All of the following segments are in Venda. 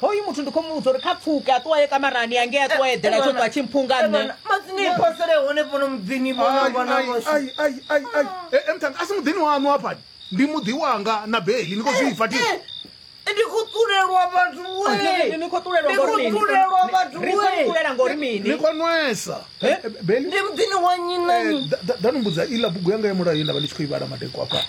hoyu muthu ndi khou muvhudza uri kha pfuke a ṱuwa ye kamarani yange a ṱuwa eḓela tsho ṱwa tshi mphunga nṋe matsini iphosele hone fhano muḓini emtanga a si muḓini waṋu hafhani ndi muḓi wanga na beli ni khou zwi ifa ti ndi khou ṱulelwa vhathu ni khou ṱulelwa vhathu ngori mini ni khou nwesa ndi muḓini wa nyi nani ḓa ni mbudza iḽa bugu yanga ya mulayo ye nda vha ndi tshi khou i vhala madekwa afhani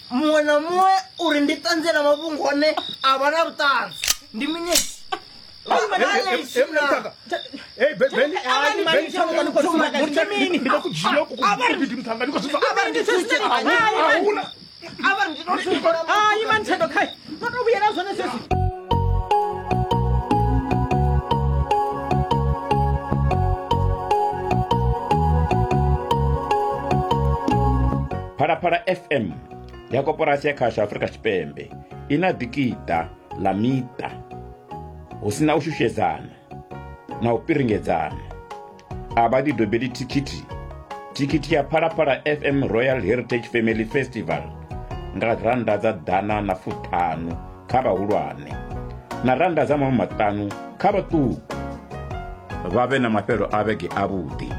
muṅwe na muṅwe uri ndi ṱanzela mafhungo one a vha na vhuṱanzi ndi mini Ai, man, Tendo, kai. phalaphala fm ya koporasi ya khasho afurika tshipembe i na ḓikiṱa ḽa miṱa hu si na u shushedzana na u piringedzana a vha ḓi dobeli thikhithi thikhithi ya phalaphala fm royal heritage family festival nga rannda dza ḓana na fuṱhanu kha vhahulwane na rannda dza maṅwe maṱanu kha vhaṱuku vha vhe na mafhelo a vhege avhuḓi